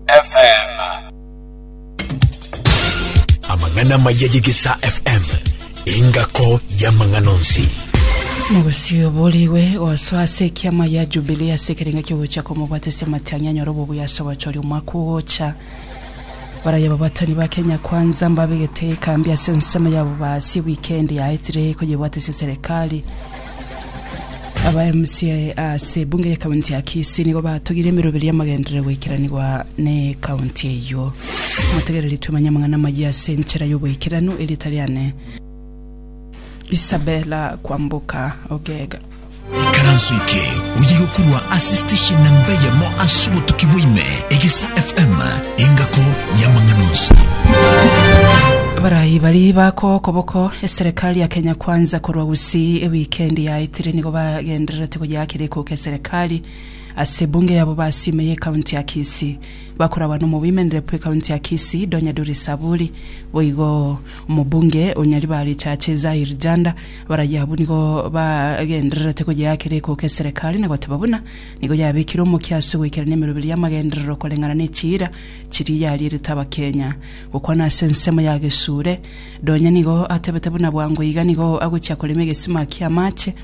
FM. Amang'ana amaya y'Egesaa FM, engako y'amang'ana onsi. Nabosio borigwe gosoa ase ekiama ya Jubilee ase ekerengo ekiogocha komobwatesia amatianyi anyore obobuya ase ogochoria omwaka ogocha. Baraya babatani ba Kenya Kwanza mbabegete ekambi ase ensemo yabo basie wikendi yaetire koyebwatesia serikali. Aba mca ase ebunge ya county ya Kisii nigo batogire emeroberi y'amagenderero goikeranigwa ne county eyio. Motegereri twemanye amang'ana amayia ase enchera y'oboikeranu erieta riane Isabella Kwamboka Ogega. Ikaranso eke oye gokorwa ase station namba eyemo ase obotuki bwaime Egesa FM engako y'amang'ana onsi. Barayi bari bako okoboko eserekari ya Kenya Kwanza korwa Gose ewikendi yaetire nigo bagendererete goyeakera ekoko eserekari ase ebunge yabo basime y'ekaunti ya Kisii. Bakoragwa n'omobimenere bw'ekaunti ya Kisii, Donya Duri Saburi, boigo omobunge o Nyaribari Chache Zahir Janda. Abarayia abwo nigo bagendererete goyeakera ekoko eserekari na goteba buna nigo yabekire omokia ase goikerania emeroberi y'amagenderero koreng'ana nechiira chiria yarierete Abakenya. Gokwana ase ensemo ya Gesure, Nonya nigo atebete buna bwango iga nigo agochia korema egesima ki'amache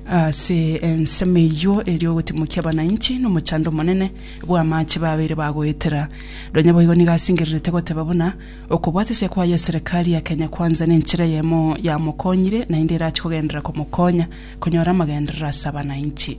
ase ensemo eyio erio ogotimokia abananchi nomochando omonene bw'amache babeire bagoetera. Nonya boigo nigo asingererete goteba buna okobwate ase kwaye eserekari ya Kenya Kwanza nenchera eyemo yamokonyire naende erache kogenderera komokonya konyora amagenderero ase abananchi.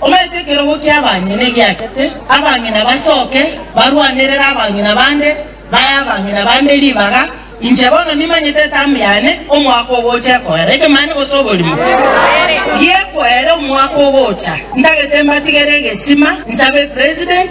Omanyete ekerogo ki'abang'ina egiachete, abang'ina basoke, barwanerere abang'ina bande, bae abang'ina bande ribaga. Inche bono nimanyete etamu yane, omwaka ogocha ekoera ekemanye gose oborimo gi'ekoera omwaka ogocha. Ntagete mbatigere egesima, nsabe President,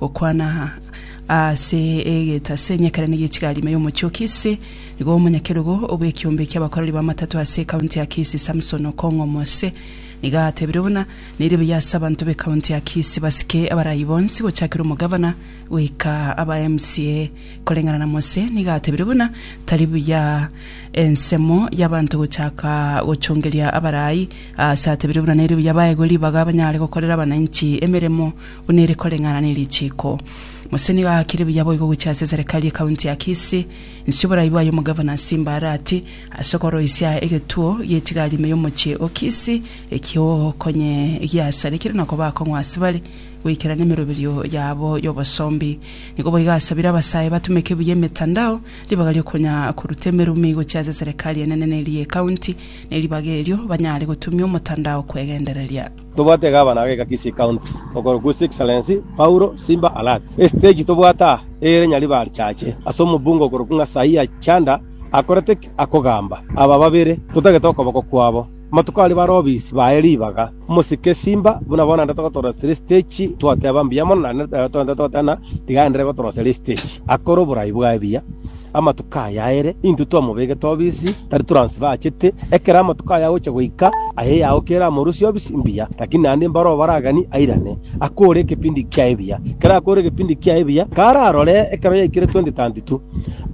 Gokwana ase egetase enyekerane gi'echigari ime y'omochie o Kisii, nigo omonyakerogo bw'ekiombe ki'abakoreri b'amatato ase ekaunti ya Kisii Samson Okong'o Mose nigo atebire buna neire buya ase abanto b'ekaunti ya Kisii basike abarai bonsi gochakera omogavana goika aba MCA. Koreng'ana na Mose nigo atebire buna tari buya ensemo y'abanto gochaka gochongeria abarai aase atebire buna neire buya baegwe ribaga banyare gokorera abanainchi emeremo buna ere koreng'ana ne richiiko. Mose nigo agakire buya boigo gochia ase eserekari ye kaunti ya Kisii. Inse oborai bwaye omogavana Simba Arati ase okoroisia egetuo gi'echigari ime y'omochie o Kisii eki'ogokonye giasarekire na koba akong'u ase bare goikerana emeroberio yabo y'obosombi. Nigo boigo asabire abasae batumeke buya emetandao ribaga ri'okonya koruta emerumi gochia ase eserekari enene ne ria ekaunti ne ribaga erio banyare gotumia omotandao kwegendereria. Tobwate Gavana ageka Kisii County okorokwa His Excellency Paulo Simba Arati. Estage tobwate aa ere Nyaribari-Chache ase omobunge okorokwa Ng'asaia Chanda akorete ki? Akogamba aba babere totagete okoboko kwabo. Amatuko aria bare obisi baye ribaga. Omosike Simba buna bono naende togotoroseria estage twoteba mbuya mono naende nere togoteba ng'a tiga aenderere gotoroseria estage akore oborai bwaye buya. amatuko aya aere intwe twamobegete obisi, tari toransiba achete. Ekero amatuko aya agocha goika, aye yao kere amorusie obisi mbuya, lakini naende mbaro obaragani airane, akore ekepindi kia ebiya. Ekero akore ekepindi kia ebiya, kararore ekero yaikire 2032,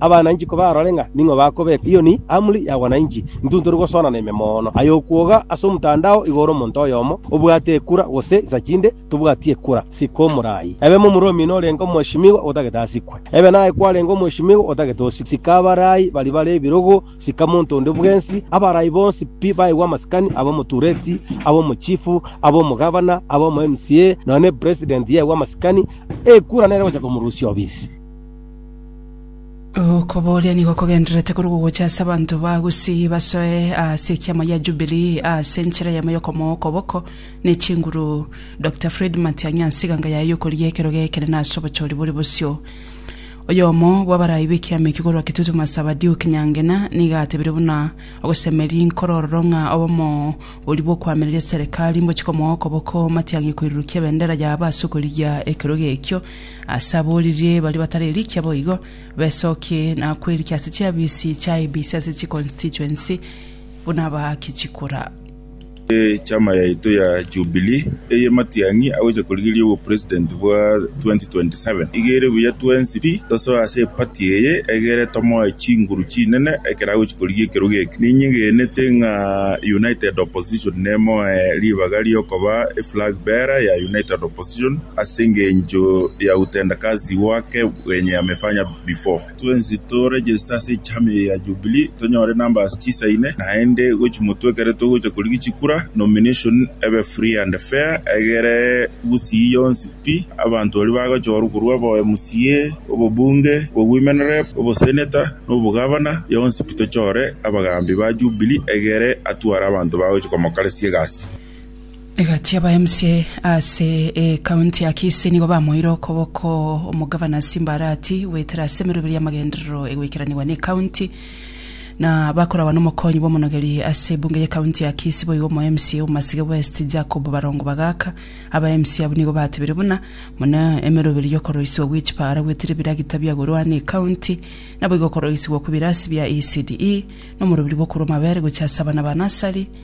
abananchi kobarore ng'a ning'o bakobeka. Eyo ni amri ya wananchi. Intwe ntori gosoana na ime mono. Aye okwoga ase omtandao igoro omonto oyomo obwate ekura gose isachinde tobwati ekura, sika omorai. Ebe momoromi norenge omweshimiwa otagete asikwe. Ebe naye kwarenge omweshimiwa otagete osikwe. Sika abarai baria bare ebirogo, sika monto onde bwensi, abarai bonsi pi baegwe amasikani, abe omotureti, abe omochifu, abe omogavana, abe omo MCA, nonya ne president yegwe amasikani, ekura nere ogocha komorusia obisi. Okobooria nigo kogendererete korwa gogocha ase abanto ba Gusii basoe ase ekiama gia Jubilee ase enchera yamo y'okomoa okoboko, ne chinguru. Doctor Fred Matiang'i ase eganga yaye y'okoria ekero geekerene ase obochori bore bosio. Oyomo bw'abaraai b'ekiama ekio korwa Kitutu Masaba Duke Nyangena nigo atebire buna ogosemeria inkoro ororo ng'a obomo boria bw'okoamereria serikali mbochie komoa okoboko Matiang'i koirurukia ebendera yabo ase okorigia ekerogo ekio ase aboririe baria batarerikia boigo besokie na kwerikia ase chiafisi chia IEBC ase chiconstituency buna abaaki chikura. Echama yaito ya Jubilee eye matiang'i agocha korigereria obo president bwa 2027. Iga ere buya twensi pi tosoe ase eparty eye egere tomoe chinguru chinene ekero agochia korigia ekerogo eke. Ninyegenete ng'a united opposition nemoe ribaga riokoba eflag bearer ya united opposition ase engencho ya utendakazi wake wenye amefanya before. twensi to register ase echama eye ya Jubilee tonyore numbers chisaine naende gochi motwe ekero togocha korigia chikura nomination ebe free and fair egere gusii yonsi pi abanto baria bagochorwa korwa obo MCA, obobunge, obo women rep, obosenator na obogavana yonsi pi tochore abagambi ba Jubilee egere atware abanto bagochi komokaresia egasi. Egati aba mca ase ekaunti ya Kisii nigo bamoire okoboko omogavana Simba Arati goetera ase emeroberio y'amagenderero egoikeraniwa na ekaunti na bakoragwa n'omokonyi bw'omonogeri ase ebunge y'ekaunti ya Kisii boigo omo mca Omasike West Jacob Barongo Bagaka aba mca abwo nigo batebire buna buna emeroberio y'okoroisigwa gw'echipaara goetera ebiragita biagorwa na ekaunti naboigo okoroisigwa kw'ebirasi bia ECDE nomorobiri bw'okorwa amabere gochia ase abana ba nasari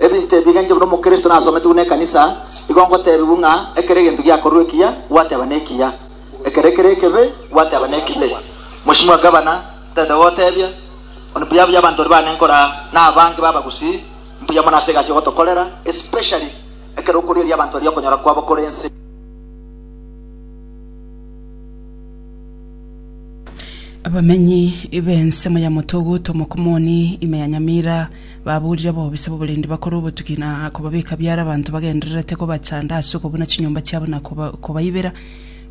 Ebinto ebi egencho buna Omokristo nasometi buna ekanisa, igo ngotebiwu ng'a ekero egento giakorwa ekiya, gwateba nekiya, ekero kere ekebe, gwateba nekibe. Mochie mwa gavana tete gogotebia, Onde mbuya buya abanto baria bane nkora na abange b'abagusii, mbuya mono ase egasi ogotokorera, especially ekero okorigereria abanto baria okonyora kwabo kore ense. Abamenyi b'ensemo ya Motogu, Tomokomoni, ime ya Nyamira, babuurire bobisa b'oborendi bakore obotuki na kobabeka biara abanto bagendererete kobachanda ase okobuna chinyomba chiabo na koba- kobaibera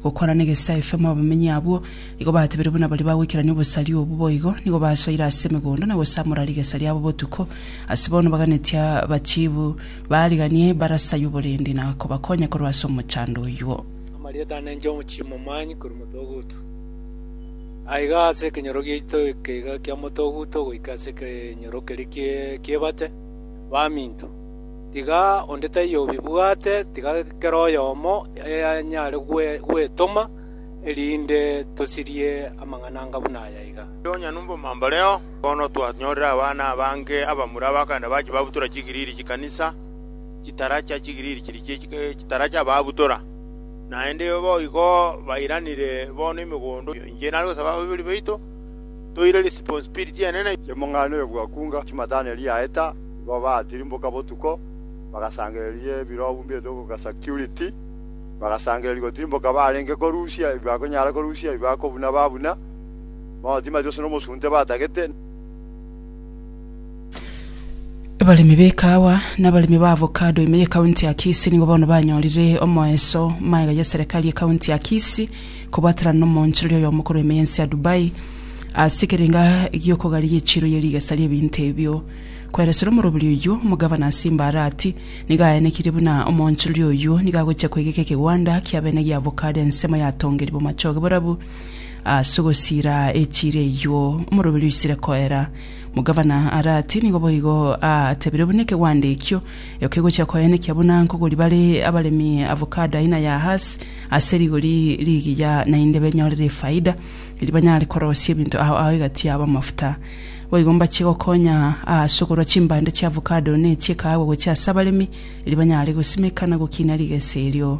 gokwana n'egesaai FM. Abamenyi abwo nigo batebire buna baria bagoikerania obosari obo boigo nigo basoire ase emegondo na gosamora rigesa riabo botuko. Ase bono baganetie abachiibu baariganie barasayie oborendi na kobakonya korwa ase omochando oyuo. Amarieta ane inche omochie momwaanyi korwa motoguto. Aiga ase ekenyoro giaito ekeiga kia motoguto goika ase ekenyoro keria kie- kiebate, baminto. Tiga onde taiyo obibwate, tiga kera oyomo anyare gwe- gwetoma, erinde tosirie amang'ana anga buna aya iga. Ase onye na obomambareo, bono twanyorire abana abange abamura abagaenda bachia babutora chigiriri chi'ekanisa. chitara chia chigiriri chiria chie chitara chi'ababutora, naende boigo bairanire bono emegondo. Inche nare gosaba ababibori baito toire responsibility enene. Chemong'aini oyo bwakunga chimatane riaeta, igo baatirimboka botuko, bagasangereria ebirobu mbieto goka security, bagasangereria gotirimboka barenge korusia ebi bakonyara korusia, ebi bakobuna babuna, bono tibamanyeti gose nomosunte batagete. Abaremi be kaawa na abaremi ba avocado ime ye county ya Kisii nigo bono banyorire omoeso maega ye serikali ye county ya Kisii kobwaterana na omonchorori oyo omokoro ime yensi ya Dubai ase ekerenga giokogaria echiro ye rigesa rie ebinto ebio. Koeresera omoroberi oyio, omogavana Simba Arati nigo aenekirie buna omonchorori oyio nigo agochia kwegeka ekegwanda kiabene gia avocado ensemo yatongerigwe machoge borabu Ase ogosiira echiira eyio, omoroberi oisire koera mogavana are ati, Nigo boigo aatebire buna ekegwande ekio kegochia koenekea buna nkogori bare abaremi avocado aina ya Hass ase rigori rigiya, naende benyorere efaida, erio banyare korosia ebinto ao ao egati yabo amafuta. Boigo mbachie gokonya ase okorua chimbande chia avocado ne chi'ekahawa gochia ase abaremi, erio banyare gosimeka na gokiina rigesa erio.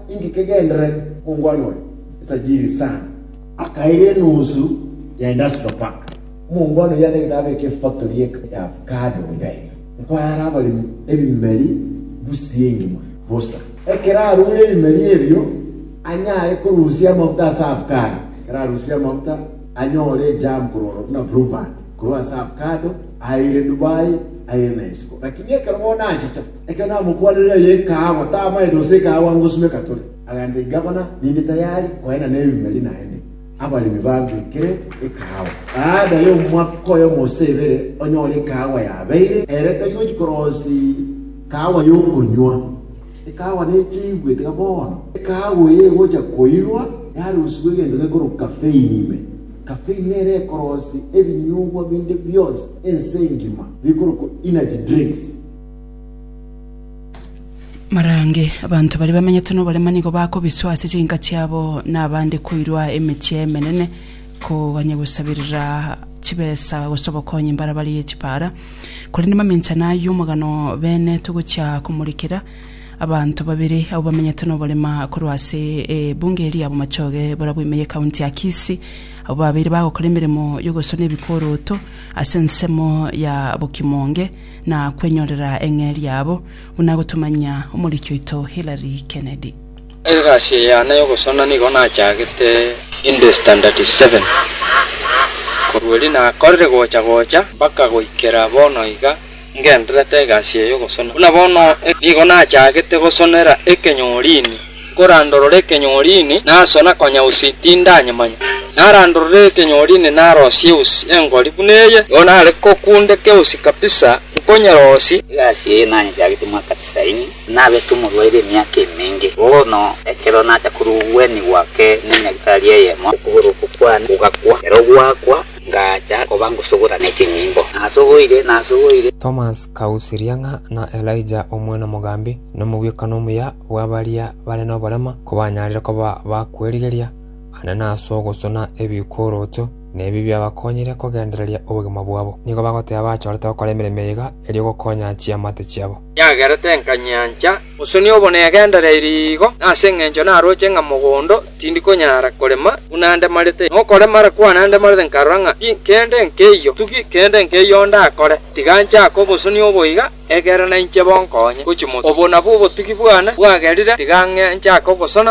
Inki kegenderete? Omongwana oria etajiri sana akaira enusu ya industrial park. Omongwana oyio atagete abeke efactory eke ya avocado gocha iga. Nkoye are abaremi ebimeri busie engima bosa. Ekero arure ebimeri ebio, anyare korusia amafuta ase avocado. Ekero arusirie amafuta, anyore ejam korwa oro buna Blue Band korwa ase avocado, aire Dubai, aire na isiko. Lakini ekero bono achicha, Ekero namokwanire eye ekaagwa, tamaete gose ekaagwa ngosimeka tore. Agaancha igabana, ninde tayari koenda nebimeri naende. Abaremi bagwekere ekaagwa. Baada y'omwaka oyomo gose ebere, onyore ekaagwa yabeire, ere tari gochia korosi kaagwa y'okonywa. Ekaagwa nechiigwe tiga bono. Ekaagwa eye egochia koirwa, yarusigwa egento gekorwa kafeini ime. Kafeini nere ekorosi ebinyugwa binde bionsi ense engima, bikorokwa energy drinks. Marange, abanto baria bamenyete noborema nigo bakobiswa ase chinka chiabo, na abande koirwa emechie emenene, kogania gosaberera chibesa gose obokonyi mbare barie chipara. Korende maminchano ayio omogano bene togochia komorekera abanto babere abwo bamenyete noborema korwa ase ebunge eria ya bomachoge barabwo ime ye county ya Kisii, abwo babeire bagokora emeremo yogosona ebikoroto ase ensemo ya bokimonge, na kwenyorera eng'eria yabo, buna agotomanyia omoriki oito Hillary Kennedy. Egasi eye yane y'ogosona nigo nachagete inde standard seven. Korwa erio nakorire gocha gocha mpaka goikera bono iga ngendererete egasi eye y'ogosona. Buna bono nigo nachagete gosonera ekenyorini. Nkorandorore ekenyoorini naso na konya usi tindanyemanya. Narandorore ekenyoorini narosie usi engori buna eye, nigo nare kokundeke usi kabisa, nkonyerosie. Egasi eye nanyechagetie mwa Katisaini, nabete omorwaire emiaka emenge. Bono ekero nacha korugwenigwa ake n'enyagitari eyemo, okogoro oko kwane kogakwa. Ekero gwakwa, ngacha koba ngosogora ne chinyimbo. Nasogoire, nasogoire. Thomas kausiria ng'a na Elijah omwene mogambi, nomogwekano omuya. bw'abaria bare noborema kobanyarire koba ba kwerigeria, aane nase ogosuna ebikuurutu, na ebi biabakonyire kogendereria obogima bwabo. Nigo bagoteba bachorete gokora emeremo eyega erio gokonya chiamate chiabo. Yagerete nkanyancha bosoni obo negendereiri igo, na ase engencho naroche ng'a mogondo tindi konyara korema buna andemarete. Na okoremara kwane andemarete nkarora ng'a ti kende nkeiyo, tugi kende nkeiyo ndakore, tiga nchake obosoni oboiga. Ekero nainche bonkonye gochia mono, obo nabwo obotugi bwane bwagerire, tiga ng'e nchake ogosona